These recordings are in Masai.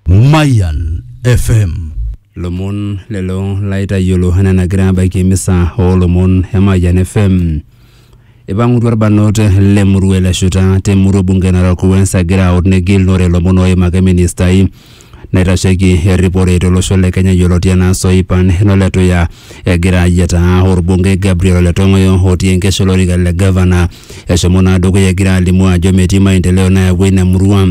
Mayan FM. lomon lelo laitayiolo enaa enagira abaiki emisa oolomon e Mayian FM. Ipang'utua irbanot le murua ele shuta te murua bunge e Narok West egira aut negilunore ilomon ooimaki ministai naitasheiki erripore tolosho le Kenya yioloti enaa Soipan Ole Tuya egira ayietaa orbungei Gabriel Ole Tong'oyo otii enkesho olorika le gavana. Eshomo naa dukuya egira alimu ajo metii maendeleo nayawua ina murua.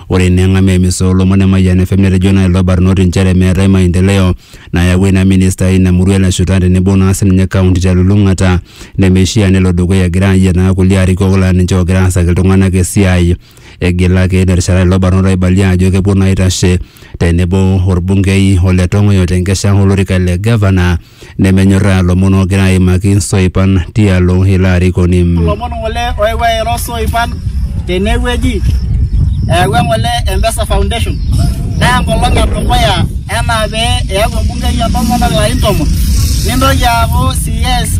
Ore eneng'amu emisa oolomon e Mayian FM netejo naa lelo barnoti nchere meetae maendeleo nayawua ina minista eina murua eleshuta tenebo naa sininye kaunti telulung'ata nemeishia nelo dukuya egira ayietaa kulie arikok laa ninche oogira aasaki iltung'anak esiai. Egilaki terishata lelo barnot aibalia ajo kepuo naa aitashe tenebo orbungei o le Tong'oyo tenkesha olorika le gavana nemenyorraa lomon oogira aimaki soipan tialo ilo arikoni. Lomon ng'ole oewuo airo soipan tene wueji eyawua eng'ole e Mpesa Foundation naa enkolong e dukuya enaa pee eyaku embungei entomononi ilarin tomon nintoki aaku CS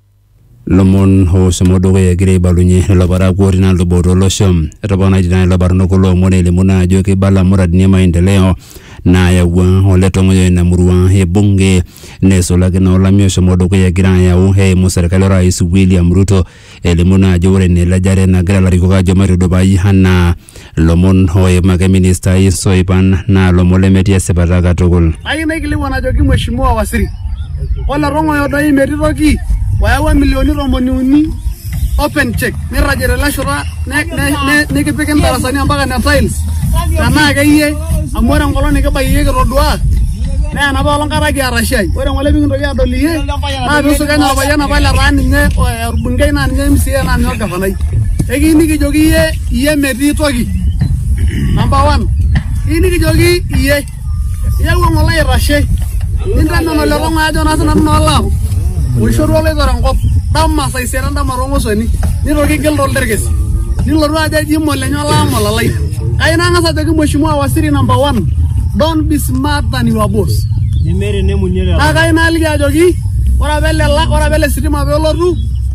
Lomon ooshomo dukuya egira aibalunye lelo parakuo otii naa lubot olosho. Etoponaitie naa lelo barnot kulo omon elimu naa ajo keibala muradini e maendeleo naayawua ole Tong'oyo ina murua e bunge neisulaki naa olameyu oshomo dukuya egira ayau eimu serkali o rais William Ruto elimu naa ajo ore naa elejare nagira ilarikok aajo maitudupai anaa Lomon ooimaki ministai isoipan naa lomon lemetii esipata katukul. Ayieu naikilikuan ajoki Mheshimiwa Waziri, ole tong'oyo doi metii toki oyawua milioni tomoni uni open cheque nirragie tele shoto nikipik indarasani ompaka ne tiles tenaa akeyie amu ore enkolong nikibayie iyie kitoduaa naa enapa olong kata kiata shai. Ore ng'ole pikintoki aadol iyie naa piisuj enaa olpayian apa letaa ninye olbungei naa ninye mca naa ninye olgavanai. Ekiyieu nikijoki iyie iyie metii toki number one iyieu nikijoki iyie iyau eng'ole aitashe nintamen ole kong'u ajo naa sinanu naa olaam oishorua oloitore enkop dama saa isiet endama toong'osoni nitoki igil tolterkes nilotu ajo eji molenye olaam olalai kai nang'as ajoki mheshimiwa waziri number one don't be smart than your boss nemeeta enemunie lelo naa kai naaliki ajoki ore apa ele la- ore apa ele sitima peelotu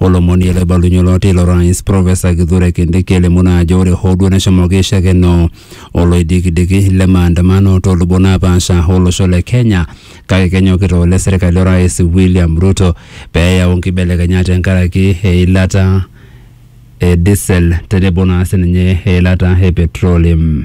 Olomoni loibalunye olo teilo rais Profesa Kithure Kindiki elimu naa ajo ore hoo duo neshomoki aishakeno oloidikidiki le maandamano too lubot naapaasha olosho le Kenya kake kenyokita ole serkali orais William Ruto pee eyau nkibelekenyat tenkaraki eilata e diesel tenebo naa sininye eilata e petroleum.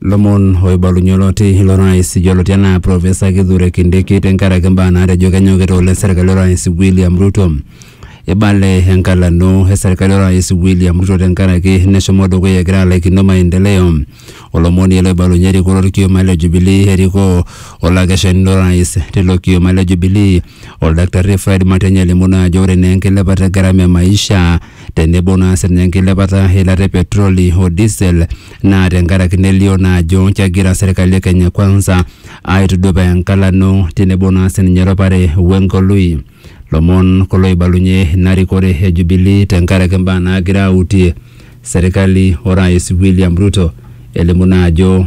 Lomon oibalunye oloti ilo rais yioloti anaa Profesa Kithure Kindiki tenkaraki mbaa naatejo kenyokita oleng serkali orais William Ruto. Eibale enkalano e serkali orais William Ruto tenkaraki neshomo dukuya egira alaikino maendeleo. Olomoni ele oibalunye erikore olkioma le Jubilee erikoo olakeshani lo rais tilo kioma le Jubilee Oldaktarri Fred Matiang'i alimu naa ajo ore naa enkilepata e gharama e maisha tenebo naa sininye enkilepata eilata e petroli o diesel naa tenkaraki nelio naa ajo kegira serkali e Kenya Kwanza aitudupaa enkalano tenebo naa sininye eropare wengoloi. Lomon kulo oibalunye ina rikore e Jubilee tenkaraki imbaa naagira autie serkali o rais William Ruto elimu naa ajo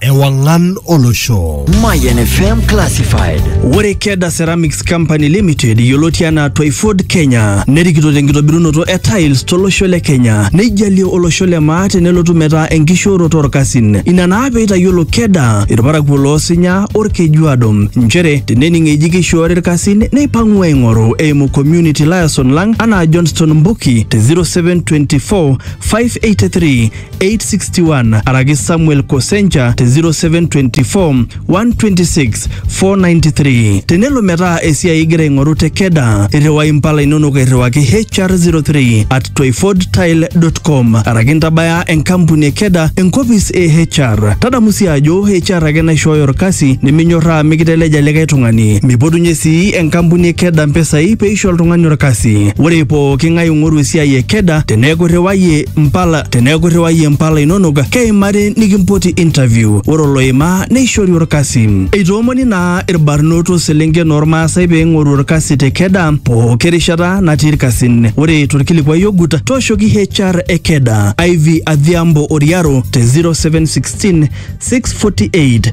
ewang'an olosho. Mayan FM Classified. Ore Keda Ceramics Company Limited yioloti anaa Twyford Kenya nerikito tenkitobirunoto e tiles tolosho le Kenya neijalie olosho le maa tenelotu metaa enkishooroto orkasin. Ina naa peitayiolo Keda irparakuo loosinya orkejuado nchere tenening eji keishoori irkasin neipang'u aing'oru eimu community liaison lang anaa Johnston Mbuki te 0724 583 861 araki Samuel Kosencha te 0724 126 493. Tenelo metaa esiai igira aing'oru te Keda, irriwai impala inonok airriwaki HR03 at twyfordtile.com araki ntabaya enkampuni e Keda enkopis e HR. Tadamu sii ajo HR ake naishooyo orkasi niminyorraa mikiteleja likae tung'ani. Mipotunye sii enkampuni e Keda mpisai peisho oltung'ani orkasi. Ore pooki ng'ae ong'oru esiai e Keda teneeku irriwayie mpala teneeku irriwayie mpala inonok keimari nikimpoti interview ore oloimaa neishori orkasi eitoomoni naa irbarnot oselenken ormaasai pee eing'oru orkasi te keda pooki rishata natii irkasin ore torkilikuai ogut tooshoki HR e keda Ivy Adhiambo Oriaro te 0716 648